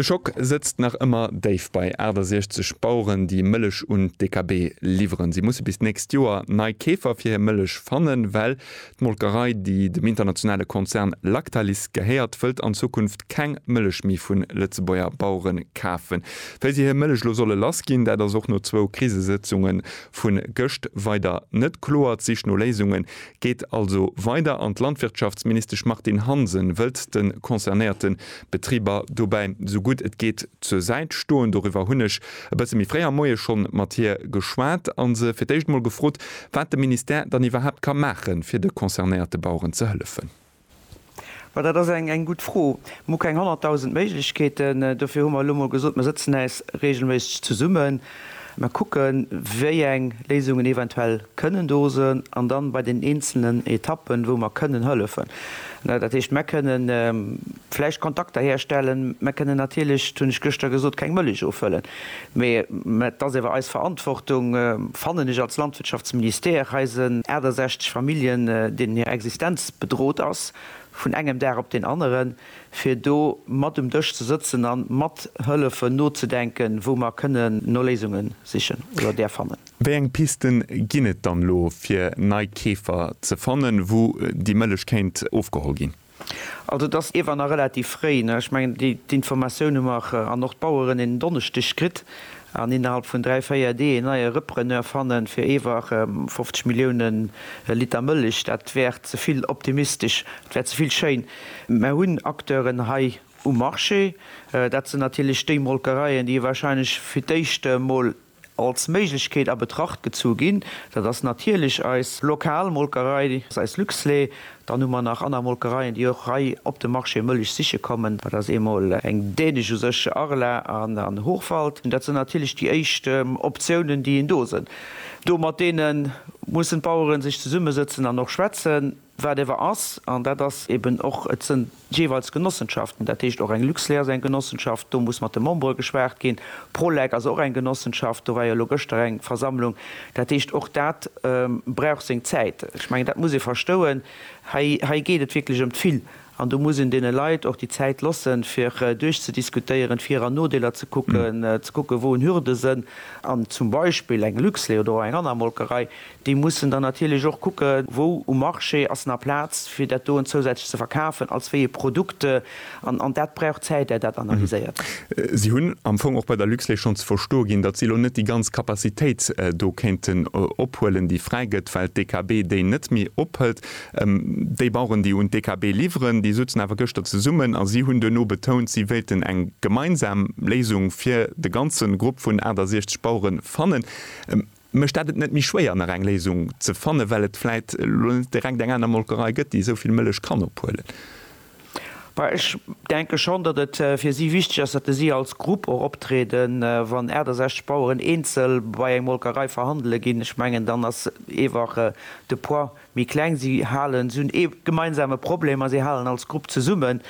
De Schock sëtzt nach ëmmer déif bei 68 Baueren, déi Mëllech un d'DKB liwweren. Si musse bis d'nächst Joer nei Keefer fir hir Mëllech fannen, well D'Molkerei, déi dem internationale Konzern Lactalis gehéiert, wëllt an Zukunft keng Mëllech méi vun Lëtzebuerger Bauere kafen. Wéi si hir Mëllech elo solle lass ginn, dat ass och no zwou Krisesëtzunge vu gëscht weider net kloer. D'Sich no Léisunge geet also weider an d'Landwirtschaftsministesch Martine Hansen wëllt de concernéierte Betriber dobäi esou gutt et geet zur Säit stoen. Doriwwer hunn ech e bësse méi fréi am Moie scho mat hir geschwat a se fir d'éischt emol gefrot, wat de Ministère dann iwwerhaapt ka maachen, fir de concernéierte Baueren ze hëllefen. Ma dat ass eng gutt Fro. Mir hu keng honnertdausend Méiglechkeeten. Dofir hu mer elo emol gesot, Mir sëtzen äis reegelméisseg zesummen, mir kucken, wéi eng Léisungen eventuell kënnen do sinn an dann bei den eenzelnen Etappen, wou mer kënnen hëllefen, Dat heescht, mer kënne vläicht Kontakter herstellen, mer kënnen natierlech, dat hunn ech gëschter gesot, keng Mëllech ofhëllen, mee et ass ewer eis Verantwortung, fannen ech, als Landwirtschaftsministère eisen 68 Familljen, deenen hir Existenz bedrot ass vun engem Dag op deen aneren, fir do mat um Dësch ze sëtzen a mathëllefen nozedenken, wou mer kënnen no Léisunge sichen oder där fannen. Wéi eng Pisten ginn et dann elo fir nei Keefer ze fannen, wou déi Mëllech kéint ofgeholl ginn? Also et ass iewer nach relativ fréi. Ech mengen d'Informatioun hu mer an och d'Baueren en Donneschdeg kritt an innerhalb vun dräi, véier Deeg en neie Repreneur fannen fir iewer 50 Millioune Liter Mëllech. Dat wär ze vill optimistesch, dat wär ze vill schéin. Mer hunn Acteuren hei um Marché, dat sinn natierlech déi Molkereien, déi wahrscheinlech fir d'éischt emol, als Méiglechkeet a Betracht gezu ginn. Dat ass natierlech eis lokal Molkerei, eis Luxlait. Dann hu mer nach aner Molkereien, déi och hei op de Marché Mëllech siche kommen. Dat ass eemol eng dänesch, u sech Arla an Hochwald. Dat sinn natierlech déi éischt Optiounen, déi een do sënn. Do mat deene mussen d'Bauere sech zesummesëtzen an och schwätzen. Wat ewer ass, an dat ass eben och, et sënn jeeweils Genossenschaften, dat heescht och eng Luxlait ass eng Genossenschaft, do muss mat de Membere geschwat ginn, Prolec ass och eng Genossenschaft, do war jo elo gëschter eng Versammlung, dat heescht och dat brauch seng Zäit. Ech mengen, dat muss ee verstouen, hei, hei geet et wierklech ëm d'Vill. An do muss een deene Leit och déi Zäit lossen, fir duerchzediskutéieren, d'Vir an Nodeeler ze kucken, ze kucken, wou en Hürde sënn. An zum Beispill eng Luxlait oder och eng aner Molkerei, déi mussen dann natierlech och kucke wou um Marché ass nach Plaz, fir dat doen zousätzlech ze verkafen, als wéi e Produkt. An dat brauch Zäit, är dat analyséiert. Si hunn am Fong och bei der Luxlait schonn ze verstoe ginn, datt si elo net déi ganz Capacitéit do kéinten ophuelen, déi fräi gëtt, well d'EKB déi net méi ophëlt. Déi Baueren, déi un d'EKB liwweren, déi souzen awer gëschter zesummen a si hunn duerno betount, si wéilten eng gemeinsam Léisung fir de ganze Grupp vun 68 Bauere fannen. Mécht dat et net méi schwéier, nach eng Léisung ze fannen, well et vläit elo net direkt eng aner Molkerei gëtt, déi esou vill Mëllech kann ophuelen? Well ech denke schonn, datt et fir si wichteg ass, datt si als Grupp och optrieden. Wann 68 Baueren eenzel bei eng Molkerei verhandele ginn, ech mengen, dann ass eewach de Poids méi kleng. Si halen, si hunn ee gemeinsame Problem a si halen als Grupp zesummen.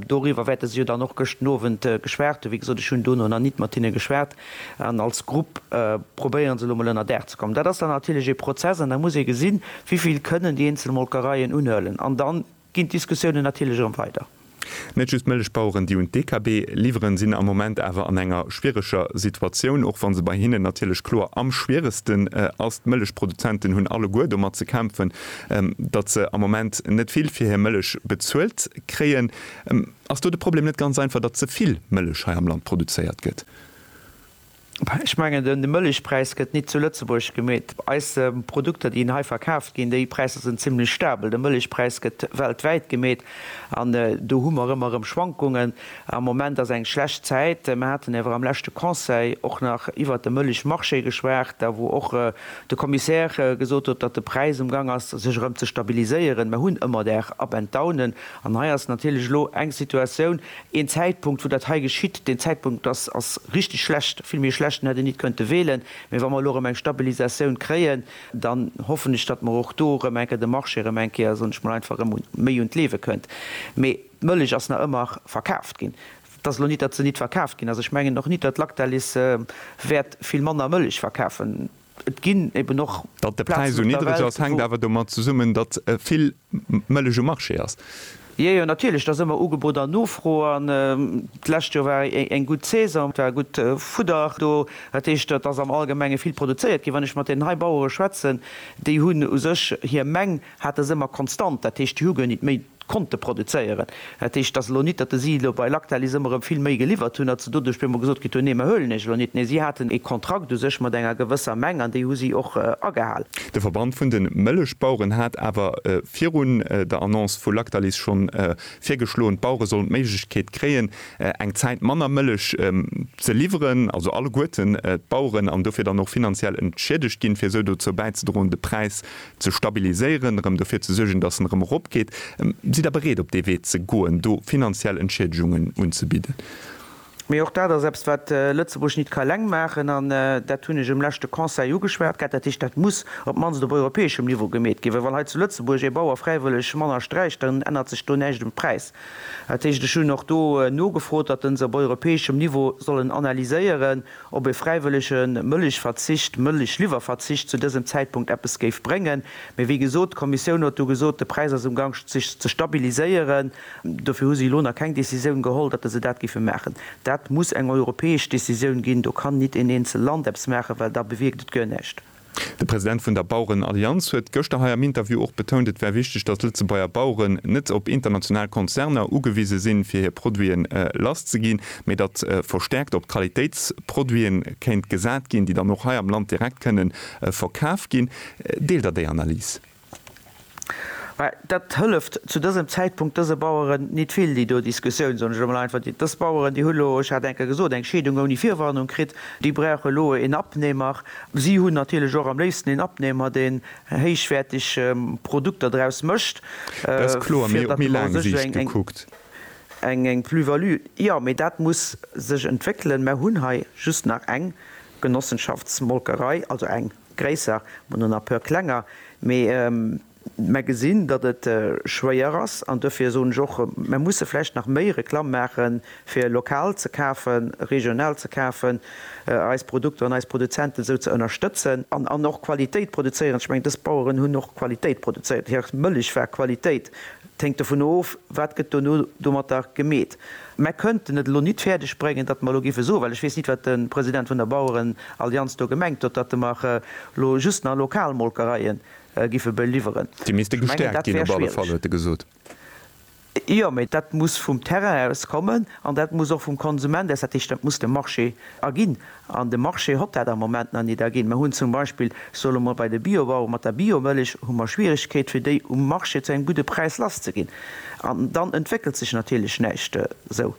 Doriwwer wäerte se jo dann och gëschten Owend geschwat hunn. Wéi gesot, ech hunn dono nach nit mat hinne geschwat. An als Grupp probéiere se elo mol ënnerdaach ze kommen. Dat ass dann natierlech ee Prozess an da muss ee gesinn, wéi vill kënnen déi eenzel Molkereien unhuelen. An dann ginn d'Diskussiounen natierlech erëm weider. Net just d'Mëllechbaueren, déi un d'DKB liwweren, sinn am Moment awer an enger schwiereger Situatioun, och wa se bei hinnen natierlech kloer am schwieregsten ass. D'Mëllechproduzenten hunn alleguer domat ze kämpfen, datt se am Moment net vill fir hir Mëllech bezuelt kréien. Ass do de Problem net ganz einfach, datt ze vill Mëllech hei am Land produzéiert gëtt? Ech mengen, de Mëllechpräis gëtt nit zu Lëtzebuerg gemeet. Eis Produkter, déi hei verkaaft ginn, déi Präisser sinn zimlech stabel. De Mëllechpräis gëtt weltwäit gemeet an do hu mer ëmmer erëm Schwankungen. Am Moment ass eng schlecht Zäit. Mer haten awer am leschte Conseil och nach iwwert de Mëllechmarché geschwat, a wou och de Commissaire gesot huet, datt de Präis um Gang ass, sech erëm ze stabiliséieren. Mer hunn ëmmer Där Up and Downen an hei ass natierlech elo eng Situatioun, Een Zäitpunkt, wou dat hei geschitt, deen Zäitpunkt ass, ass richtig schlecht, vill méi schlecht, en hätt een nit könnte wählen. Mee wa mer elo erëm eng Stabilisatioun kréien, dann hoffen ech, datt mer och do erëm eng Kéier de Marché erëm eng Kéier, soen ech mol einfach, erëm un, méi un d'Liewe kënnt. Mee d'Mëllech ass nach ëmmer verkaaft ginn. Et ass elo nit, datt se nit verkaaft ginn ass. Ech mengen och nit, datt Lactalis wäert vill manner Mëllech verkafen. Et ginn eben och. Datt de Präis esou niddreg ass, hänkt awer domat zesummen, datt vill Mëllech um Marché ass. Jo, jo, natierlech, et ass ëmmer Ugebot an Nofro. An d'lescht Joer war eng gutt Saison, et war gutt Fudder do. Dat heescht, et ass am Allgemenge vill produzéiert ginn. Wann ech mat deenen hei Bauere schwätzen, déi hunn u sech hir Meng. hate se ëmmer konstant, dat heescht déi hu guer nit méi konnte produzéieren. Dat heescht, et ass elo nit, datt si elo bei Lactalis ëmmer erëm vill méi geliwwert hunn, datt se doduerch op eemol gesot kritt hunn, nee mer huelen iech elo nit. Nee, si haten ee Kontrakt u sech mat enger gewësser Meng an déi hu si och agehalen. De Verband vun de Mëllechbaueren hat awer virun der Annonce vu Lactalis schonn virgeschloen, d'Bauere sollen d'Méiglechkeet kréien, eng Zäit manner Mëllech ze liwweren, also alleguerten d'Baueren, an dofir dann och finanziell entschiedegt ginn, fir esou dozou bäizedroen, de Präis ze stabiliséieren, erëm dofir ze suergen, dass en erëm eropgeet. Sidd Der bereet, op dee Wee ze goen, do finanziell Entschiedegungen unzebidden? Mee och dat ass eppes, wat Lëtzebuerg nit ka eleng maachen. An dat hunn ech um leschte Conseil ugeschwat gehat. Dat heescht, dat muss op d'mannst op europäeschem Niveau gemeet ginn, well wann hei zu Lëtzebuerg ee Bauer fräiwëlleg manner sträicht, dann ännert sech do näischt um Präis. Dat heescht, ech hunn och do nogefrot, datt en se op europäeschem Niveau sollen analyséieren. ob e fräiwëllege Mëllechverzicht, Mëllechliwwerverzicht zu dësem Zäitpunkt eppes géif bréngen. Mee wéi gesot, d'Kommissioun huet do gesot, de Präis ass umgank sech ze stabiliséieren. Dofir hu se elo nach keng Decisioun geholl, datt se dat géife maachen. Dat muss eng europäesch Decisioun ginn. Do kann nit en eenzel Land eppes maachen, well da bewierkt et guer näischt. De President vun der Bauerenallianz huet gëschter hei am Interview och betount, et wär wichteg, datt Lëtzebuerger Baueren net op international Konzerner ugewise sinn, fir hir Produiten lass ze ginn, mee datt verstäerkt op Qualitéitsproduite kéint gesat ginn, déi dann och hei am Land direkt kënnen verkaf ginn. Deelt Der déi Analys? Mä dat hëlleft zu dësem Zäitpunkt dëse Baueren nit vill, déi do Diskussioun, soen ech emol einfach. Dës Baueren, déi hu lo, ech hat enker gesot, eng Scheedung ouni Virwarnung kritt, déi brauche lo een Abnehmer. Si hunn natierlech och am léifsten een Abnehmer, deen héichwäerteg Produkter draus mécht, fir datt mer u sech eng Plus-value, jo, mee dat muss sech entwéckelen. Mer hunn hei just nach eng Genossenschaftsmolkerei, also eng. Gréisser, mol no na peur klenger, mee mär gesinn datt et schwéier ass an dofir soen ech och, mär musse vläicht nach méi Reklamm maache fir lokal ze kafen, regional ze kafen, eis Produkter an eis Produzenten esou ze ënnerstëtzen an och Qualitéit produzéieren. Ech mengen dës Baueren hunn och Qualitéit produzéiert, hir Mëllech war Qualitéit. 't hänkt dovun of, wat gëtt dono domatter gemeet. Mär kënnten et elo nit fäerdeg bréngen, datt mer elo géife soen, well ech weess nit, wat de President vun der Bauerenallianz do gemengt huet, datt mer elo just nach lokal Molkereie géife beliwweren. Déi misste gestäerkt ginn op alle Fall, huet e gesot. Jo, mä dat muss vum Terrain aus kommen an dat muss och vum Konsument aus, dat heescht, dat muss de Marché erginn. An de Marché hott dat am Moment nach nit erginn. Mer hunn zum Beispill, soe lo mol, bei de Biobauere mat der Biomëllech hu mer Schwierigkeet fir déi um Marché zu engem gudde Präis lass ze ginn. An dann entwéckelt sech natierlech näischt esou.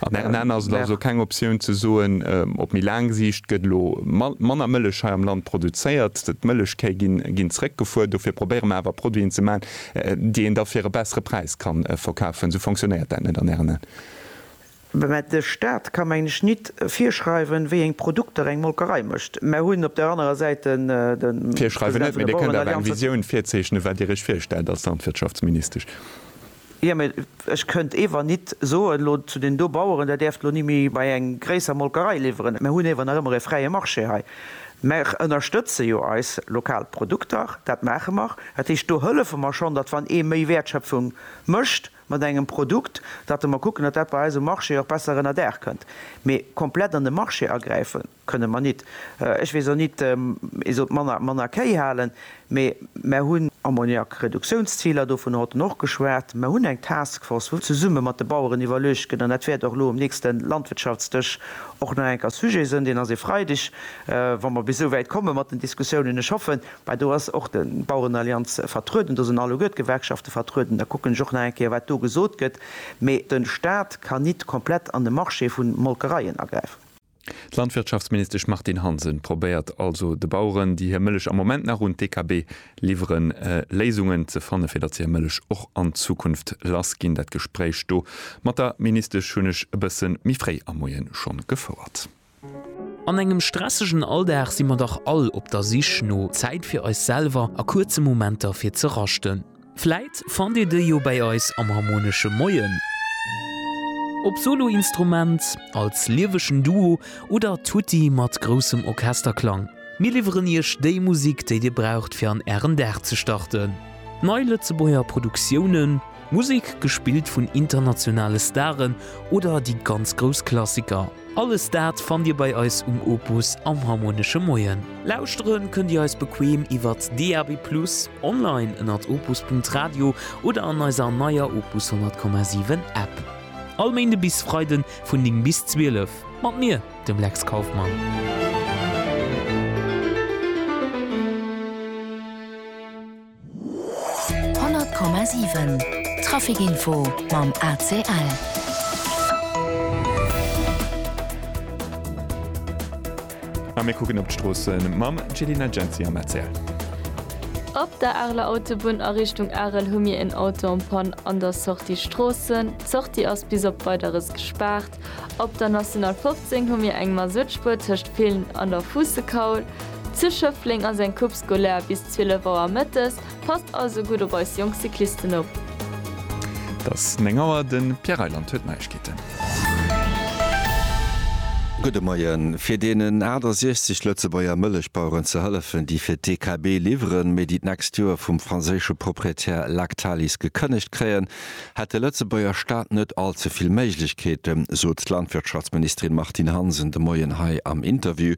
An Ären Aen ass et also keng Optioun ze soen, op méi laang Siicht gëtt elo manner Mëllech hei am Land produzéiert, d'Mëllechkéi ginn zréckgefuer, dofir probéiere mer awer Produiten ze maachen, déi een da fir e bessere Präis ka verkafen. Esou fonctionnéiert dat net an Ären Aen? Mä de Stat ka mengen ech nit virschreiwen, wéi eng Produkter eng Molkerei mécht. Mer hunn op der anerer Säit de Virschreiwen net, mä Dir kënnt awer eng Visioun virzeechnen, wat Dir Iech virstellt als Landwirtschaftsministesch. Jo, mä ech kënnt ewer nit soen elo zu deenen do Baueren, Där däerft elo ni méi bei eng gréisser Molkerei liwweren. Mer hunn ewer nach ëmmer e fräie Marché hei. Mer ënnerstëtze jo eis lokal Produkter, dat maache mer. Dat heescht, do hëllefe mer schonn, datt wann ee méi Wäertschöpfung mécht, mat engem Produkt, datt mer kucken, datt dat bei eis um Marché och besser ënner d'Aer kënnt, mee komplett an de Marché agräife kënne mer nit. Ech weess och nit, ee sollt manner, manner Kéi halen, mee mer hunn. Ammoniak-Reduktiounsziler, dovun hott en och geschwat. Mer hunn eng Taskforce, wou zesumme mat de Baueren iwwerluecht gëtt, an dat wäert och elo um nächste Landwirtschaftsdësch och nach eng Kéier Sujet sënn, deen ass ee Freideg, wa mer bis esou wäit komme mat den Diskussiounen, ech hoffen, Mä do ass och d'Bauerenallianz vertrueden, do sinn alleguer d'Gewerkschafte vertrueden, da kucken ech och nach eng Kéier, wat do gesot gëtt. Mä de Stat kann nit komplett an de Marché vu Molkereien agräifen. D'Landwirtschaftsministesch Martine Hansen probéiert also de Baueren, déi hir Mëllech am Moment nach un d'EKB liwweren, Léisungen ze fannen, fir datt se hir Mëllech och an Zukunft lass ginn. Dat Gespréich do mat der Ministesch hunn ech e bësse méi fréi am Moie schonn gefouert. An engem stressegen Alldag si mer dach all op der Sich no Zäit fir eis selwer a kuerze Momenter fir ze raschten. Vläit fannt Dir déi jo bäi eis am Harmonesche Moien, ob Soloinstrument, als liewegen Duo oder tutti mat groussem Orchesterklang. Mir liwweren Iech déi Musik, déi Dir braucht fir an Ären Dag ze starten. Nei Lëtzebuerger Produktiounen, Musek gespillt vun internationale Staren oder déi ganz grouss Klassiker. Alles dat fannt Dir bei eis um Opus am Harmonesche Moien. Lauschteren kënnt Dir eis bequem iwwert DAB+, online ënnert opus.radio oder an eiser neier Opus 100,7 App. All Méinde bis Freide vun 9 bis 12 mat mir, dem Lex Kauffmann. 100,7 Traficinfo mam ACL. A mir kucken op d'Stroossen mam Celina Genzi am ACL. Op der Areler Autobunn a Richtung Arel hu mir en Auto en panne an der Sortie Stroossen. D'Sortie ass bis op Weideres gespaart. Op der National 15 hu mir eng Mazoutspur tëscht Villen an der Fuussekaul. Zu Schëffleng ass eng Coupe scolaire bis 12 Auer mëttes, passt also gutt op eis jonk Cyclisten op. Et ass 9 Auer, de Pierre Reyland huet d'Neiegkeeten. Gudde Moien. Fir deenen 68 Lëtzebuerger Mëllechbaueren ze hëllefen, déi fir d'DKB liwweren, mee déi d'nächst Joer vum franséische Proprietär Lactalis gekënnegt kréien, hätt de Lëtzebuerger Staat net all ze vill Méiglechkeeten, sot d'Landwirtschaftsministerin Martine Hansen de Moien hei am Interview.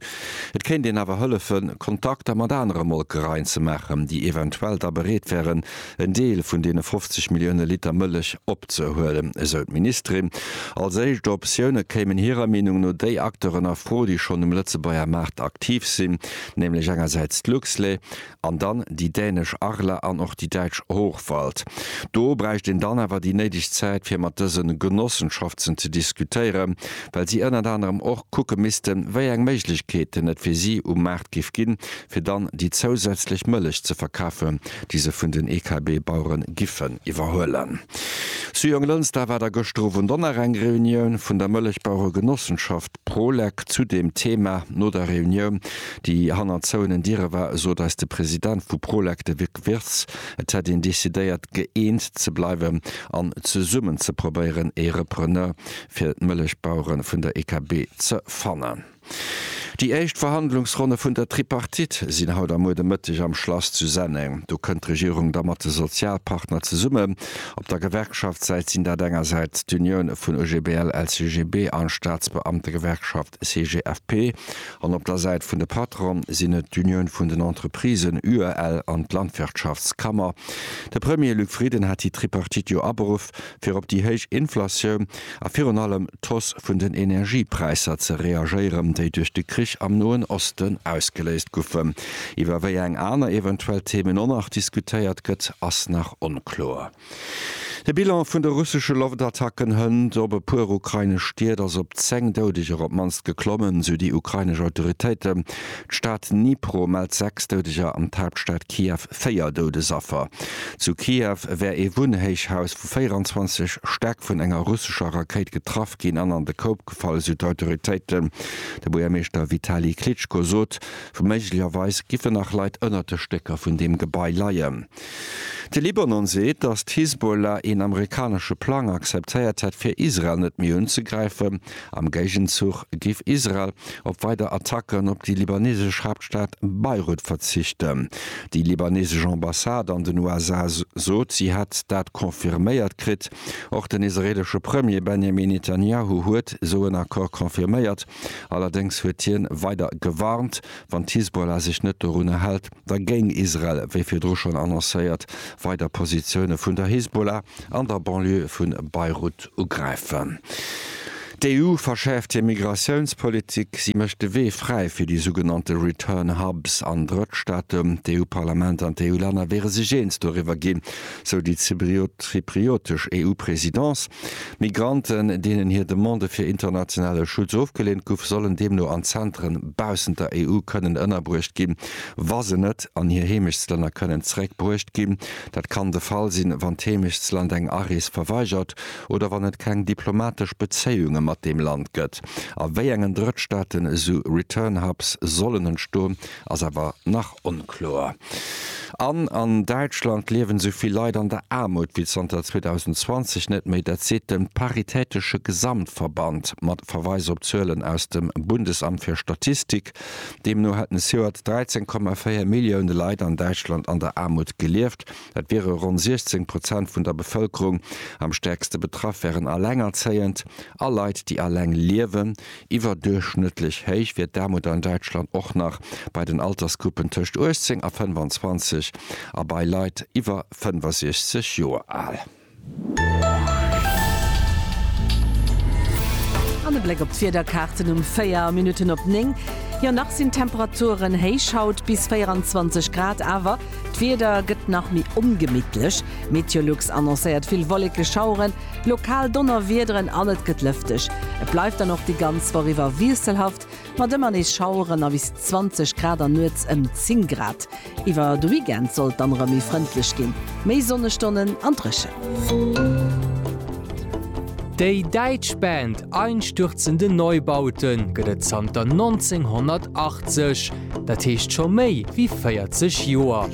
Et kéint een awer hëllefen, Kontakter mat anere Molkereien ze maachen, déi eventuell da bereet wären, en Deel vun deene 50 Millioune Liter Mëllech opzehuelen, esou d'Ministerin. Als éischt Optioune kéimen hirer Meenung no déi Acteuren a Fro, déi schonn um Lëtzebuerger Maart aktiv sinn, nämlech engersäits d'Luxlait, An dann déi dänesch Arla an och déi däitsch Hochwald. Do bräicht een dann awer déi néideg Zäit, fir mat dëse Genossenschaftsen ze diskutéieren, well si ënnert anerem och kucke missten, wéi eng Méiglechkeeten et fir si um Maart géif ginn, fir dann déi zousätzlech Mëllech ze verkafen, déi se vun den EKB-Bauere giffen iwwerhuelen. Zu Jonglënster war da gëschter Owend och nach eng Reunioun vun der Mëllechbaueregenossenschaft. D'Prolek zu deem Thema no der Reunioun, déi hannert zouenen Diere war, sot eis de President vu Prolek, de Vic Wirtz, et hätt een decidéiert, gëeent ze bleiwen an zesummen ze probéieren, ee Repreneur fir d'Mëllechbauere vun der EKB ze fannen. Déi éischt Verhandlungsronne vun der Tripartite sinn haut a muer de Mëtteg am Schlass zu Senneng. Do kënnt d'Regierung da mat de Sozialpartner zesummen. Op der Gewerkschaftssäit sinn dat engersäits d'Unioune vun OGBL, LCGB a Staatsbeamtegewerkschaft CGFP an op der Säit vun de Patronen sinn et d'Unioun vun den Entreprisen, UEL, an d'Landwirtschaftskammer. De Premier Luc Frieden hat déi Tripartite jo aberuff, fir op déi héich Inflatioun, a virun allem d'Hausse vun den Energiepräisser ze reagéieren, déi duerch de Krich am Noen Osten ausgeléist goufen. Iwwer wéi eng aner eventuell Themen och nach diskutéiert gëtt, ass nach onkloer. De Bilan vun de russesche Loftattacken hënt op e puer ukrainesch Stied ass op 10 Doudeger op d'mannst geklommen, sou déi ukrainesch Autoritéiten. D'Stad Dnipro mellt 6 Doudeger an d'Haaptstad Kiew véier Doudesaffer. Zu Kiew wär ee Wunnhéichhaus vu 24 Stäck vun enger russescher Rakéit getraff ginn an an de Koup gefall, esou d'Autoritéiten. De Buergermeeschter Vitali Klitschko sot, méiglecherweis géifen nach Leit ënnert de Stécker vun deem Gebai leien. De Libanon seet, datt d'Hisbollah een amerikanesche Plang akzeptéiert hätt, fir Israel net méi unzegräifen. Am Géigenzuch géif Israel op weider Attacken op déi libanesesch Haaptstad Beirut verzichten. Déi libanesesch Ambassade an den USA sot, si hätt dat confirméiert kritt. Och den israeelesche Premier Benjamin Netanjahu huet esou en Accord confirméiert. Allerdéngs huet hien weider gewarnt, wann d'Hisbollah sech net dorunner hält, Da géing Israel, wéi virdru schonn annoncéiert, weider Positioune vun der Hisbollah an der Banlieue vu Beirut ugräifen. D'EU verschäerft hir Migratiounspolitik. Si mécht de Wee fräi fir déi sougenannte Return Hubs an Drëttstaaten. D'EU-Parlament an d'EU-Länner wiere sech eens doriwwer ginn, sou déi zypriotesch EU-Presidence. Migranten, deenen hir Demande fir internationale Schutz ofgeleent guff, sollen deemno an Zentren baussent der EU kënnen ënnerbruecht ginn, wa se net an hir Heemechtslänner kënnen zeréck bruecht ginn. Dat kann de Fall sinn, wann d'Heemechtsland eng Arees verweigert oder wann et keng diplomatesch Bezéiunge mat deem Land gëtt. A wéi engen Drëttstaaten esou Return Hubs sollen entstoen, ass awer nach onkloer. An an Däitschland liewen esou vill Leit an der Aarmut wéi zanter 2020 net méi. Dat seet de Paritätesche Gesamtverband mat Verweis op Zuelen aus dem Bundesamt fir Statistik. Deemno hätten e Joert 13,4 Millioune Leit an Däitschland an der Aarmut gelieft. Dat wiere ronn 16 Prozent vun der Bevëlkerung. Am stäerkste betraff wären Elengerzéiend a Leit, déi eleng liewen. Iwwerduerchschnëttlech héich wier d'Aarmut an Däitschland och nach bei den Altersgruppen tëscht 18 a 25 a bei Leit iwwer 65 Joer al. An e Bléck op d'Wiederkaarten um 4 Minutten op 9. Jo nach sinn d'Temperaturen héich, haut bis 24 Grad, awer d'Wieder gëtt nach méi ongemittlech. Meteolux annoncéiert vill Wolleke, Schaueren, lokal Donnerwiederen an et gëtt lëfteg. Et bleift dann och déi ganz Woch iwwer wiesselhaft mat ëmmer nees Schaueren a bis 20 Grad an nuets ëm 10 Grad. Iwwer de Weekend soll et dann erëm méi frëndlech ginn, méi Sonnestonnen an dréchen. Déi däitsch Band Einstürzende Neubauten gëtt et zanter 1980, dat heescht scho méi wéi 40 Joer.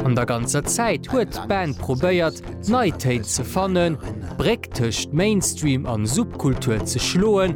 An der ganzer Zäit huet d'Band probéiert, nei Téin ze fannen, d'Bréck tëscht Mainstream an Subkultur ze schloen.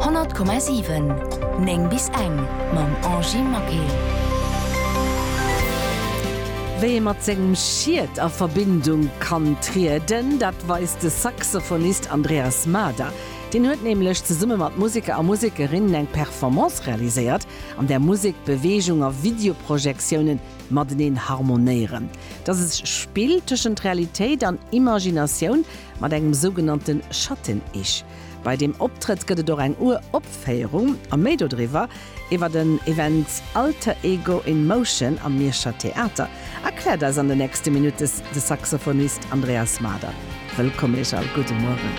100,7 9 bis eng mam Angie Maquet. Wéi ee mat sengem Schiet a Verbindung kann trieden, dat weist de Saxophonist Andreas Mader. Deen huet nämlech zesumme mat Museker a Musekerinnen eng Performance realiséiert, an där Musek, Beweegung a Videoprojektiounen mateneen harmonéieren. Dass e Spill tëschent Realitéit an Imaginatioun. Mat engem sougenannte Schatten-Ich. Bei deem Optrëtt gëtt et och eng Ur-Opféierung a méi dodriwwer, iwwer den Event Alter Ego in Motion am Mierscher Theater, erkläert eis an de nächste Minutes de Saxophonist Andreas Mader. Wëllkomm Iech all, gudde Mueren.